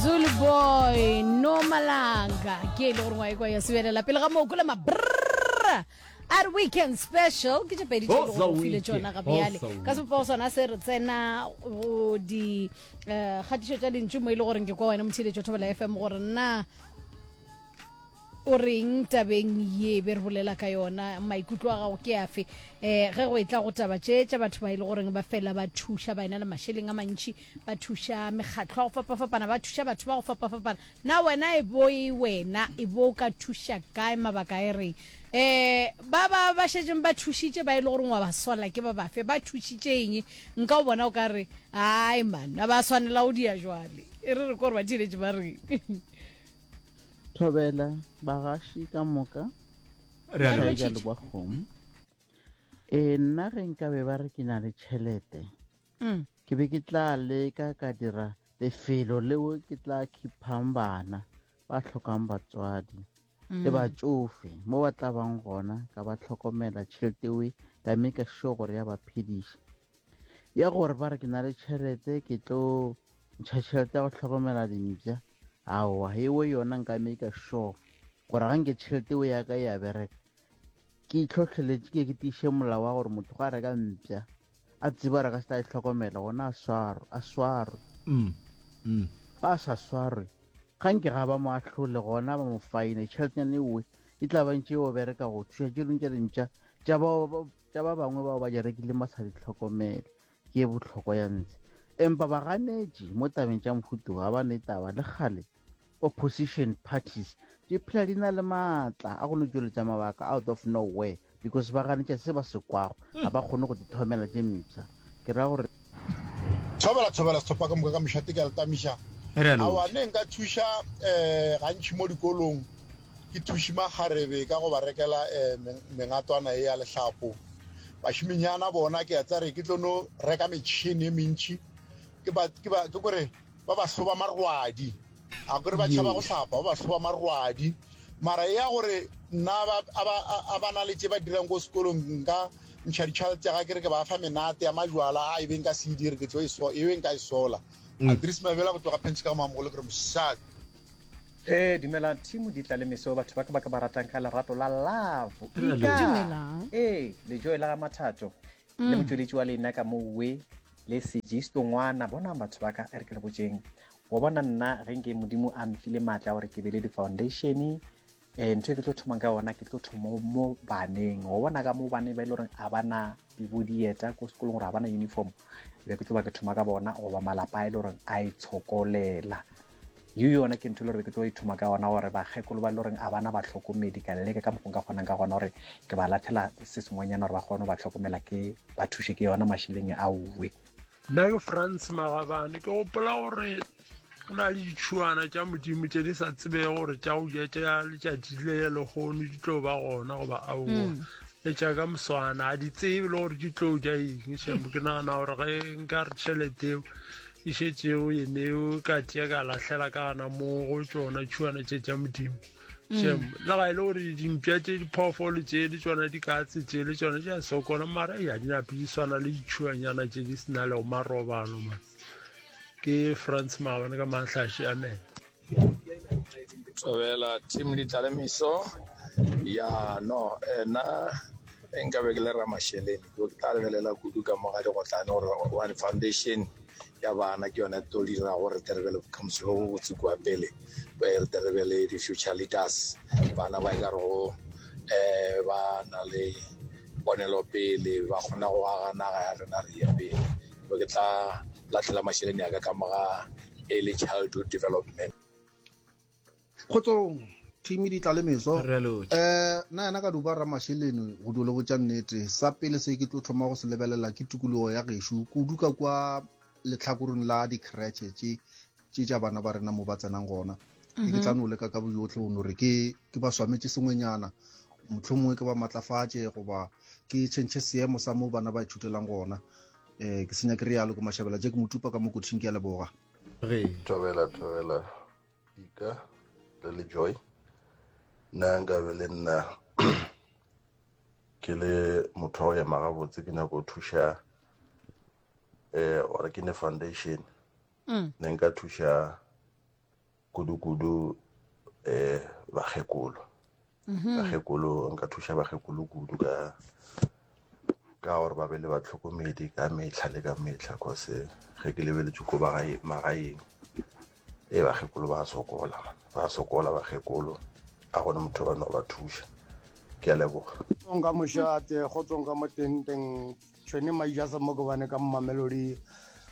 zulu boy no malanga ke e le gore ngwae kwa ya sebelela pele ga moo kole mabrra a re weekend special ke tše pedi tše e lego gore o file tšona ga bjale ka sepopa go sona se re tsena go di eh, kgatišo tša lentšu mo e le goreng ke kwa wena motheletšo thobela fm gore na O reng tabeng ye be re bolela ka yona? Maikutlo a gago ke afe um ge go etla go taba tše tša batho ba e le goreng ba fela ba thuša, ba ena le mašeleng a mantši, ba thuša mekgatlo ya go fapafapana, ba thuša batho ba go fapafapana? Na wena e bo e wena e bo o ka thuša kae, mabaka a e reng? Um ba ba ba šetšeng ba thušitše ba e le goreng wa ba sola ke ba bafe? Ba thušitše eng? Nka o bona o ka re, Ai man, a ba swanela go dia jwale. E re re ko re ba theeletše ba reng? Thobela bagaši ka moka Re a leboga. Shaika le kwa kgomo e nna ge nka be ba re ke na le tšhelete Mm. ke be ke tla leka ka dira lefelo leo ke tla khiphang bana ba tlhokang batswadi le Mm. batšofe mo ba tla bang gona ka ba tlhokomela tšhelete ewe ka me ka sure gore ya ba phediša ya gore ba re ke na le tšhelete ke tlo ntšha tšhelete ya go tlhokomela dimpša aowa ewe yona nka me ka sure gore ga nke tšhelete o ya ka e ya bereka ke itlhotlheletše ke ke tiiše molao wa gore motho ga reka mpša a tseba re ka se tla e tlhokomela gona a swaro a swarwe mm, mm. ga a sa swarwe ga nke ga ba mo ahlole gona ba mo faine tšheletenyane ewe e tla bantše o bereka go thuša tše dingwe tša dimpša tša ba tša ba bangwe bao ba di rekileng ba sa di tlhokomele ke e bohlokwa ya ntse empa baganetši mo tabeng tša mohutu ga ba ne taba le kgale opposition parties di phela di na le maatla a go no tšweletša mabaka out of nowhere because ba ganetša se ba se kwago ga ba kgone go di thomela tše mpsha ke ra gore Thobela thobela sethopa ka moka ka mošate ke a le tamiša. Awa ne nka thuša eh gantši mo dikolong ke thuši makgarebe ka go ba rekela eh mengatwana e ya lehlapo. Bashiminyana bona ke a tsare ke tlo no reka metšhini e mentši ke ba ke ba ke gore Ba ba hloba marwadi. A kore ba tšhaba go hlapa, ba ba hloba marwadi. Mara ya gore nna a ba na le tše ba dirang ko sekolong nka ntšha ditšhwale tša ga ke re ke ba fa menate ya majwala a e beng ka se e dire ke tlo e beng ka e sola. Mm. Adris Mabela go tloga Pentsika Mamogolo ke re mosadi. Eh, dumela Timo di tla le meso batho ba ka ba ka ba ratang ka lerato la love. Dumelang. Eh, lejoe la ga Mathato. le motšweletši wa lena ka mouwe le sejisto ngwana bonang batho ba ka e re ke le botseng wa bona nna ge nke modimo a mfile maatla gore ke be le di-foundation um eh, ntho e ke tlo thomang ka yona ke tlo thoma mo baneng wa bona ka mo bane ba e le goreng a bana dibodieta ko sekolong gore a bana uniform be ke tlo ba ke thoma ka bona goba malapa a e le goreng a e tshokolela yo yona ke ntho e le gore ke tlo ithoma ka gona gore bakgekolo ba le goreng a bana batlhokomedi ka leleke ka mokgong ka kgonang ka gona gore ke ba lathela se sengwenyana gore ba kgone go ba tlhokomela ke ba thushe ke yona mašeleng a uwe nna ke france magabane ke gopola gore go na le ditšhuana tša modimo tše di sa tsebege gore tša go ja tša letšatši le ya legono di tlo ba gona goba aowa mm. le tša ka moswana a di tsebe le gore di tlo ja eng šemo ke nagana gore ge nka re tšhelete eo e šetšego yeneo ka tšea ka lahlela ka gana moo go tšona tšhuana tše tša modimo mm. shem le ga e le gore dimpša tše diphoofolo tše le tsona dikatse tše le tsona tša sokola mara ya dinape di swana le ditšhuanyana tše di sena lego marobalo ma ke france maabane ka matlhaše amen tswabela team ditlalemiso ya no ena e nka be ke le ramasheleni ke tla lebelela kudu ka moga digotlane gore one foundation ya bana ke yone to dira gore re terebe le bokamoso bo botse kua pele re terebe le di-future leaders bana ba e ka rego um eh, ba na le ponelopele ba kgona go aga naga ya rena re ye pele be ke tla lahlela mašeleni a ka ka moga early childhood development kgotsong thimi di tla le meso um eh, na yena ka duba ra mašeleni go dule go tša nnete sa pele se ke tlo thoma go se lebelela ke tukologo ya gešo kudu ka kwa letlhakoreng la di-cratche tše tše tša bana ba rena mo ba tsenang gona ke ke tla no leka ka boyotlhe go no re ke ke ba swametše sengwenyana motlho mongwe ke ba matlafatše goba ke tšhentšhe seemo sa mo bana ba ithutelang gona um ke senya ke re yalo ke mashabela je ke motupa ka mo kothing ke ya leboga thobela thobela dika le le joy nna nkabe le nna ke le motho wa go ema gabotse ke nyako thuša um eh, ore ke ne foundation ne nka thuša kudu-kudu um bakgekolo mm-hmm. bakgekolo nka thuša bakgekolo kudu ka ka gore ba be le batlhokomedi ka metlha le ka metlha cause ge ke lebeletše ko magaeng e bakgekolo ba sokola ba sokola bakgekolo a gone motho ba no ba thuša ke a leboga tsonga mošate go tsonga mo tenteng Tšhweni Maijase Mokobane ka Mamelodi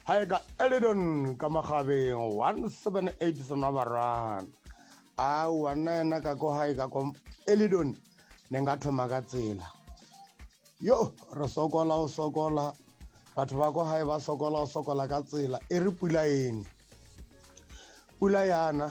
ga e ka Elidon ka Magabeng 178 Senabarana a wa nna yena ka ko ga e ka ko Elidon ne nka thoma ka tsela yo re sokola o sokola batho ba ko gae ba sokola o sokola ka tsela e re pula ene pula yana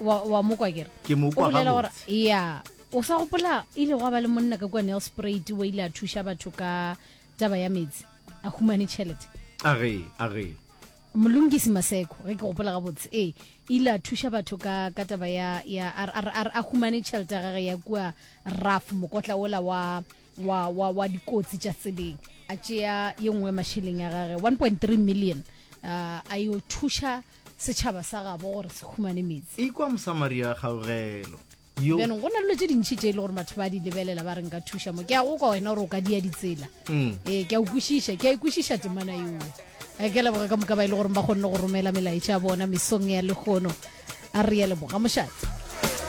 wa, wa mo kwa kere Ke mo kwa o bolela gore gabotse. ya o sa gopola ile gwa ba le monna ka kua nelspruit o ile a thuša batho ka taba ya metsi a humane tšhelete a re a re molungisi maseko ge ke gopola gabotse ee ile a thuša batho ka ka taba ya ya a re- a re- a re- a humane tšhelete ya gage ya kua raf mokotla ola wa wa, wa, wa dikotsi tša tseleng a tšea ye nngwe mašeleng ya gage 1.3 million uh, a yo thuša setšhaba sa gabo gore se humane metsi ikwa mosamaria kgaogelo yo bjanong go na le dilo tše dintšhi tše e le gore batho ba di lebelela ba re nka thuša mo ke ya go kwa wena gore o ka dia ditsela Mm. ee ke a ukwešiša ke a ikwešiša temana yoo a ke leboga ka moka ba e le goreng ba kgonne go romela melaetša ya bona mesong ya lekgono a re ya leboga mošate